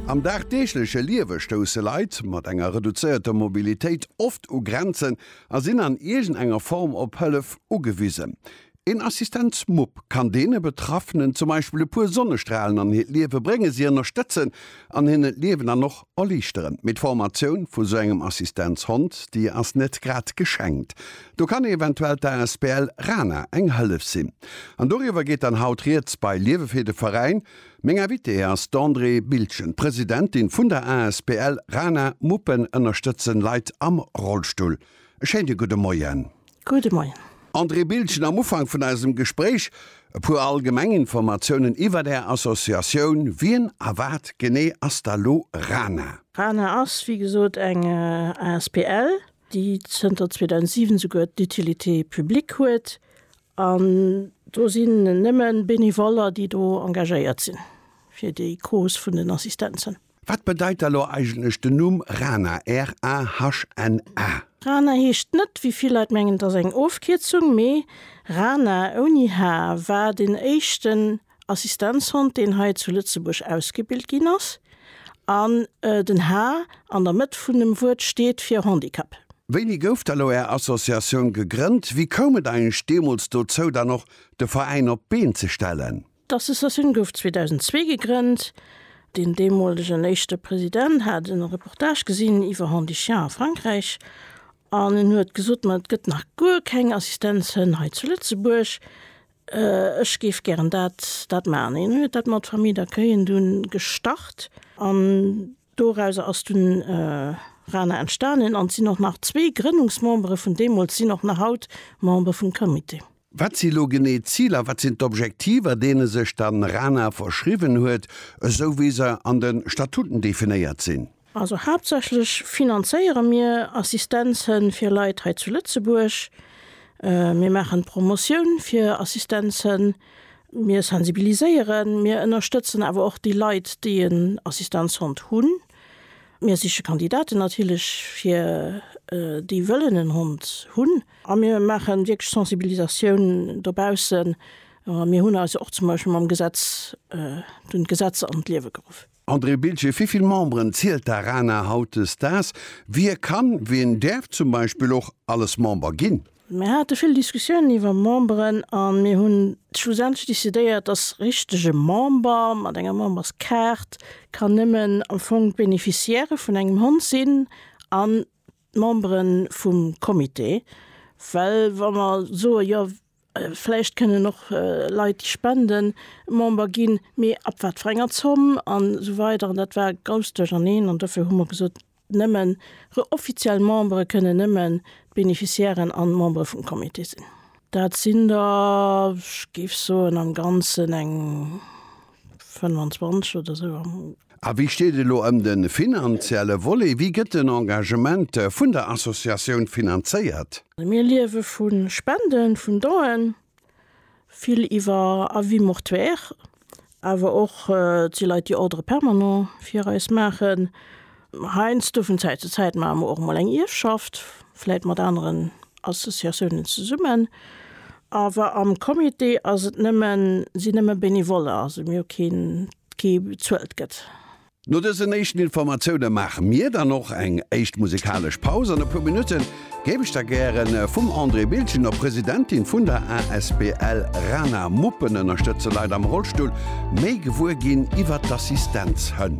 Am dagdeegleche Liewe stousse Leit mat enger reduzéierter Mobilitéit oft u Grenzen a sinn an iergend enger Form op Hëllef ugewisen. Een Assistenzmupp kann deene Betraffenen zum Beispill e puer Sonnestralen an hiert Liewe bréngen, si ënnerstëtzen an hinnen d'Liewen dann och erliichteren. Mee d'Formatioun vu sou engem Assistenzhond, déi ass net grad geschenkt. Do kann eventuell d'ASBL Rana eng Hëllef sinn. An doriwwer geet dann haut Rieds bei Liewe fir de Veräin. Meng Invitée ass d'Andrée Bildgen, Presidentin vun der asbl Rana Muppen ënnerstëtzen Leit am Rollstull. E schéine gudde Moien. Gudde Moien. Andrée Bildgen, am Ufank vun eisem Gespréich e puer allgemeng Informatiounen iwwert Är Associatioun. Wien a wat genee ass da lo Rana? Rana ass, wéi gesot, eng asbl. déi zënter 2007 souguer d'Utilité publique huet, an do sinn nëmme Benevoller, déi do engagéiert sinn fir déi Cause vun den Assistenzen. Wat bedeit da lo eigentlech den Numm RANA, R-A-H-N-A? Rana heescht net, wéi vill Leit mengen, et ass eng Ofkierzung, mee Rana, ouni H, war den éischten Assistenzhond, deen hei zu Lëtzebuerg ausgebilt ginn ass, an den H an der Mëtt vun dem Wuert steet fir Handicap. Wéini gouf da lo Är Associatioun gegrënnt? Wéi koum et eigentlech deemools dozou, dann och de Veräin op d'Been ze stellen? D'Associatioun gouf 2002 gegrënnt. Deen deemolegen éischte President hat e Reportage gesinn iwwer Handichiens a Frankräich an en huet gesot, ma et gëtt nach guer keng Assistenzhënn hei zu Lëtzebuerg. Ech géif gären dat, dat maachen. Hien huet dat mat Famille d'accueillen dunn gestart an dorauser ass dunn RaNa entstanen an et sinn och nach zwee Grënnungsmembere vun deemools sinn och nach haut Member vum Comité. Wat si lo genee d'Ziler, wat sinn d'Objektiver, deene sech dann RaNa verschriwwen huet, esou wéi se an de Statuten definéiert sinn? Also haaptsächlech finanzéiere mir Assistenzhënn fir Leit hei zu Lëtzebuerg. Mir maachen Promotioun fir Assistenzhënn, mir sensibiliséieren, mir ënnerstëtzen awer och déi Leit, déi en Assistenzhond hunn. Mir siche Kandidaten natierlech fir déi wëllen en Hond hunn. A mir maache wierklech Sensibilisatioun dobaussen. Mir hunn eis och zum Beispill mam Gesetz, dunn d'Gesetz an d'Liewe geruff. André Biltgen, Wéivill Memberen zielt d'ARANA hautdesdaags? Wie kann, wien däerf zum Beispill och alles Member ginn? Mir hate vill Diskussiounen iwwer Memberen a mir hunn schlussendlech decidéiert, dass richtege Member mat enger Memberskaart kann nëmmen am Fong d'Beneficiairë vun engem Hond sinn an d'Membere vum Comité. Well wa mer soe jo, Vläicht kënnen och Leit, déi spenden, Member ginn, mee ab wat fir enger Zomm an esou weider. An dat war e grousst Duercherneen. An dofir hu mer gesot, nëmmen offiziell Membere kënnen nëmmen d'Beneficiairen an d'Membere vum Comité sinn. Dat sinn der, ech géif soen, am Ganzen eng. 25 oder esou am. A wéi steet et elo ëm de finanzielle Volet? Wéi gëtt den Engagement vun der Associatioun finanzéiert? Mir liewe vu Spenden, vun Donen, vill iwwer Avis mortuaires, awer och déi Leit, déi Ordre permanent fir eis maachen. Heiansdo, vun Zäit zu Zäit, maache mer och emol eng Ierfschaft, vläit mat aneren Associatiounen zesummen. Awer am Comité ass et nëmme, sinn nëmme Benevoller, also mir hu keen, kee bezuelt gëtt. No dësen éischten Informatioune maache mir dann och eng éischt musekalesch Paus. An e puer Minutte géif ech da gäre vum Andrée Biltgen, der Presidentin vun der asbl Rana Muppen ënnerstëtze Leit am Rollstull, méi gewuer ginn iwwert d'Assistenzhënn.